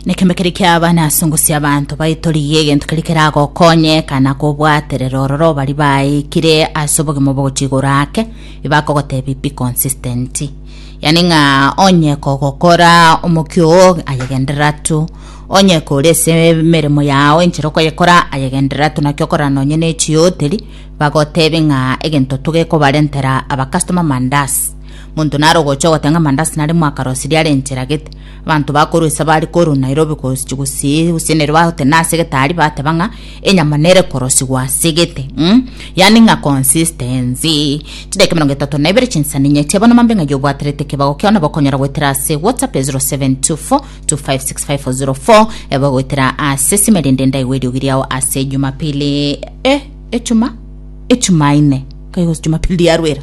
nekembe keri kiaba nasungusia abanto baitorigie egento keri keragokonye kana kobwaterera ororo bari baikire ase obogima bogochigora ake ebakogotebi be consistent yani ng'a onye kogokora omokio oo ayegenderera tu onye kore ase emeremo yao enchera okoyekora ayegenderera tu naki okorana nonye ne echioteri bagotebe ng'a egento togekobarentera abakastoma mandas Monto nare ogocha ogotee ng'a mandasi nare mwakarosirie are enchera gete. Abanto bakorwa ise bare korwa Nairobi gochi- gosii gose nere bagotena ase getari bateba ng'a enyama nere korosigwa ase gete mm? yaani ng'a consistency. Chidakika emerongo etato na ibere chinsani inye teba nomba mbe ng'ai obwaterete ekebago kiao nabo okonyora goetera ase whatsapp ya 0724256504 eba goetera ase esime rende ndaigwe eriogi riao ase ejumapili eh ejuma ejumaine kai gose jumapili riarwera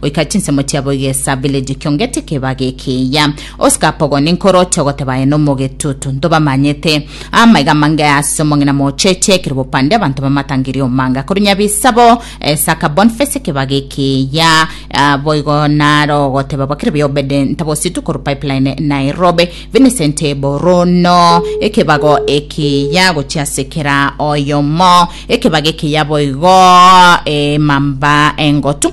Goika chinsemo chiabo igesa village kionge tikebage ekiya. Oscar pogo ninkoroche ogoteba aye nomogetutu. Ntobamanyete. Amaiga mange ase omong'ina mocheche ekero bopande abanto bamatangeria omanga akorwa Nyabisabo. Eh, Saka Bonface ekebage ekiya. Ah, boigo naro ogoteba bakire bi Obede Ntabositu korwa Pipeline Nairobi. Vincent Boruno ekebago ekiya gochia ase kera oyomo. Ekebage ekiya boigo eh, Mamba Engotu.